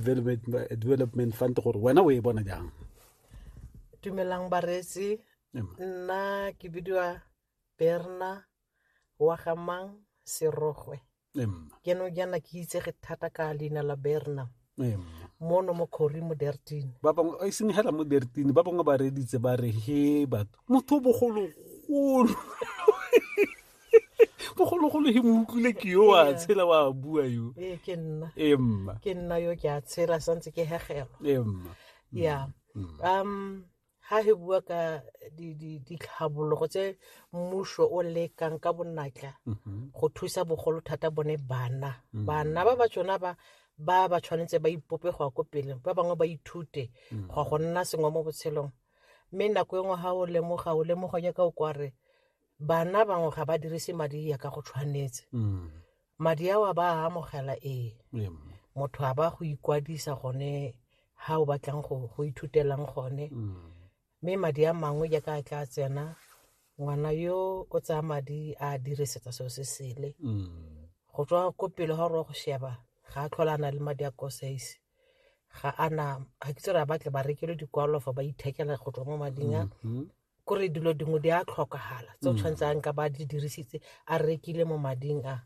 development, development fund gore wena o e bona jang dumelang bareetsi Ema. nna ke bidiwa berna wa gamang serogwe Ema. ke no jana ke itsege thata ka leina la berna Ema. mono mo kgori mo dertine ba bangwe a iseng hela mo dertine ba bangwe ba reditse ba re he batho motho o bogologolo bogologolo he mo utlwile ke yo wa Ee. tshela wa bua yo ee ke nna ee mma ke nna yo ke a tshela santse ke hegelwa ee mma ya Mm. um ha he bua ka di- di- ditlhabologo tse mmuso o lekang ka bonatla Mhm. go thusa bogolo thata bone bana Mm. bana ba ba tsona ba ba ba tshwanetse ba ipope go ya ko pele ba bangwe ba ithute Mm. go ya go nna sengwe mo botshelong mme nako e nngwe ga o lemoga o lemoga nyaka o kware bana bangwe ga ba dirise madi ya ka go tshwanetse Mm. madi ao a ba a amogela ee Ee, mma. motho a ba go ikwadisa gone ga o batlang go go ithutelang gone Mm. mme madi a mangwe jaaka a tla tsena ngwana yo o tsaya madi a dirisetsa seo se sele Mm. go tswa ko pele ga gore go sheba ga a tlhola a na le madi a kosaise ga ana ga ke tsere a batle ba rekele dikwalo fa ba ithekela go tswa mo mading a Mhm. kore dilo dingwe di a tlhokagala tse o tshwanetse a nka ba di dirisitse a rekile mo mading a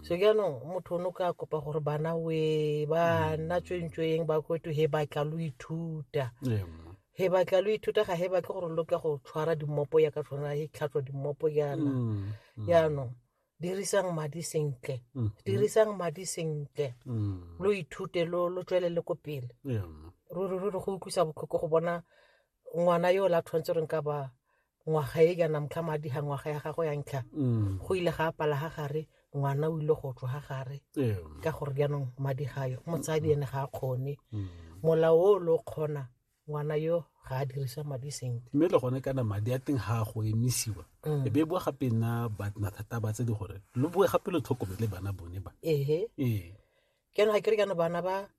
so jaanong motho o ne o ka kopa gore bana we bana tswentsweng ba kweto he batla lo ithuta Ee, mma. he batla lo ithuta ga he batle gore lo ka go tshwara dimmopo ya ka tshwana he tlhatswa dimmopo yana Mm, mm, jaanong dirisang madi sentle mm, dirisang madi sentle mm. lo ithute lo lo tswelele ko pele Ee, mma. ruri ruri go utlwisa botlhoko go bona ngwana yo o la tshwanetse re nka ba ngwaga e kana motlha madi ga ngwaga ya gago ya ntlha Mm. go ile ga apala ga gare ngwana o ile go tswa ga gare Ee. ka gore jaanong madi gayo motsadi ene ga a kgone Mm. molao o lo kgona ngwana yo ga a dirisa madi sentle mme le gone kana madi a teng ga a go emisiwa Mm. e be e boa gape nna ba- mathata ba tse di gore lo boe gape lo tlhokomele bana bone ba ehe ee ke yana ga kere kana bana ba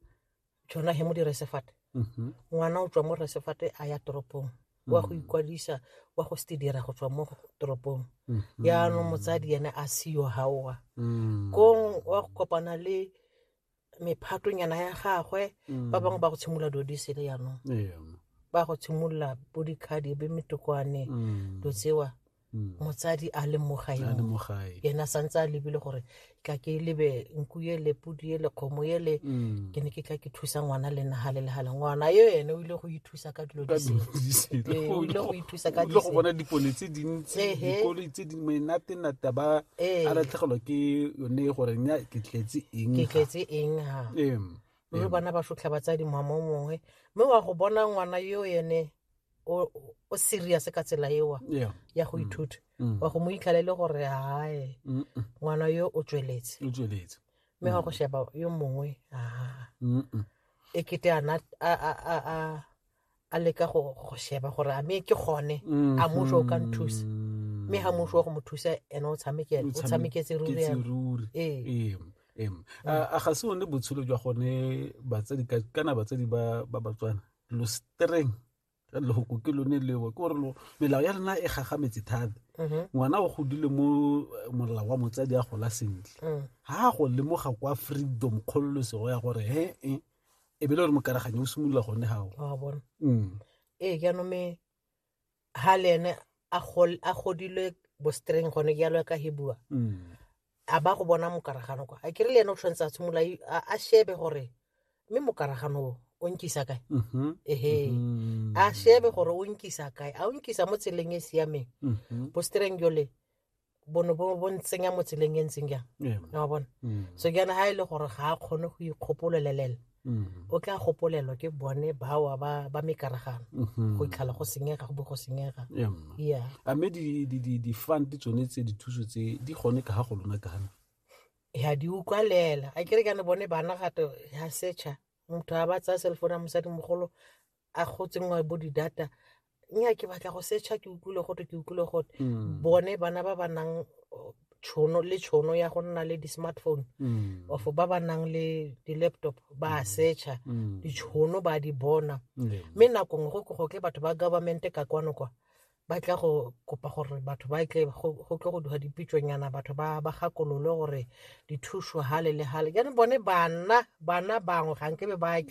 jona he mo diresefate mhm. ngwana o tswa mo resefate a ya toropong wa go ikwadisa wa go se dira go tswa mo toropong mhm. yaanong motsadi ene a seyo gaoa mm. kong wa go kopana le mephatonyana ya gagwe ba mm. bangwe ba go tshimolola dilo di sele yaanong ba go tshimolola bo dikgadi be metokwane mm. do tsewa mm. motsadi a le mo gae yena santse a lebile gore ka ke lebe nku ye le pudi ye le kgomo ye le mm. ke ne ke tla ke thusa ngwana le naga le legale ngwana yo ene o ile go ithusa ka dilo o ile go ithusa ka go bona dipone tse dintsi dikoloi tse di menatenata ba a latlhegelwa ke yone gore nya ke tletse eng ke tletse eng ha mme bana ba sotlha batsadi mama o mongwe mme wa go bona ngwana yo ene o o serious ka tsela ewa Yeah. ya go ithuta Mm. wa go mo itlhala e le gore hae Mm, mm. ngwana yo o tsweletse o tsweletse mme wa go sheba yo mongwe aa Mm, mm. e kete ana a a a a a leka go go sheba gore a me ke gone a mmuso o ka nthusa Mm. mme ga mmuso wa go mo thusa ene o tshameke- o tshameketse ruri Ketse yana. ruri. Ee. Em, em. A a ga se one botshelo jwa gone batsadi ka- kana batsadi ba ba batswana lo streng ka lehoko ke lone leo ke gore lo melao ya rena e gagametse thata ngwana o godile mo eh, molao wa motsadi a gola sentle Mm. ga a go lemoga kwa freedom kgololosego ya gore he e e be le gore mokaraganyo o simolola gone gago wa bona Mm. ee jaanong me ha le ene a gol- a godilwe bostreng gone jalo ya ka he bua Mm. a ba go bona mokaragano kwa a kere le ene o tshwanetse a tshimolola i- a a shebe gore mme mokaragano o o nkisa kae Mhm. ehe Mhm. a shebe gore o nkisa kae a o nkisa mo tseleng e e siameng Mhm. bostreng jole bono bo bo ntsenya mo tseleng e ntseng jang Yeah. na wa bona Mm. so ke yana ga e le gore ga a kgone go ikgopololelela Mm. o tla gopolelwa ke bone bawa ba ba mekaragano Mhm. go itlhala go senyega go bo go senyega Yeah, mma. ya a mme di- di- di- di-fund tsone tse dithuso tse di gone ka ga go lona kana ya di utlwalela a kere kana bone bana gato ya setšha motho a ba tsaya cellphone ya mosadimogolo a go tsenngwa bo di-data nya ke batla go searcha ke utlwile gote ke utlwile gote mm. bone bana ba ba nang tšhono le tšhono ya go nna le di-smartphone mm. of ba ba nang le di-laptop ba a mm. searcha mm. ditšhono ba di bona mme mm. nako nngwe go ke batho ba government ka kwano kwa ba tla go kopa gore batho ba tle go tlo go duga dipitsonyana batho ba ba gakolole gore dithuso gale le gale jaanong bone bana bana bangwe ga nkebe ba tla